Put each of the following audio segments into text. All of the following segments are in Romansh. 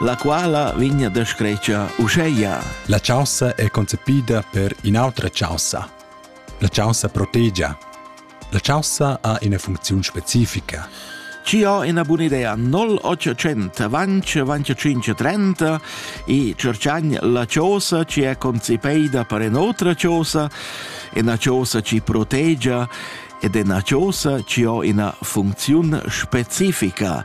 la quala vegna descretscha uscheia. La chaussa è concepida per in'autra chaussa. La chaussa protegia. La chaussa ha ina funcziun specifica. Ci ho una buona idea 0800 vance vance 530 e cerchan la chiosa ci è concepida per un'altra chiosa e una chiosa ci protegia ed è una chiosa ci ho una funzione specifica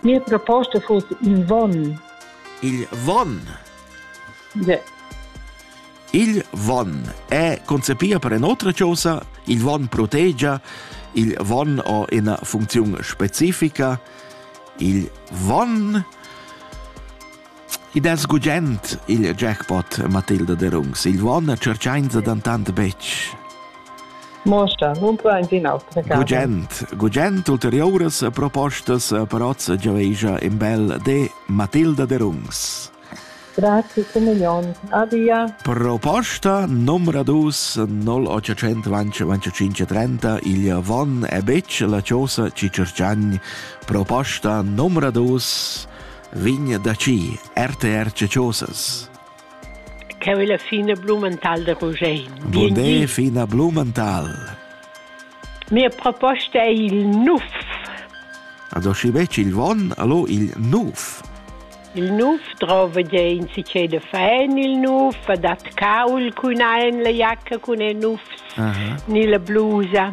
Mia proposta fuss il vonn. Il vonn? Yeah. Il vonn è concepia per un'otra cosa. Il vonn protegia, il vonn ha una funzione specifica. Il vonn Id es gugent, il jackpot Matilda Derungs. Il Won tscherchainsa dantant betg. Mosta, nun plains in autra casa. Gugent, gugent ulteriuras propostas per oz giavegia in bel de Matilda Derungs. Grazie, Comunion. Adia. Proposta numero 2 0825 il Von e Bitch la Ciosa ci cercagni. Proposta numero 2 Vigna da ci, RTR Ceciosas. Cheu è la fina blumental de Rugein. Bude fina blumental. Mia proposta è il nuf. Adoshi bec il von, allo il nuf. Il nuf trova de in si c'è de fan il nuf, dat caul cun ein la giacca cun e nufs, uh -huh. ni la blusa.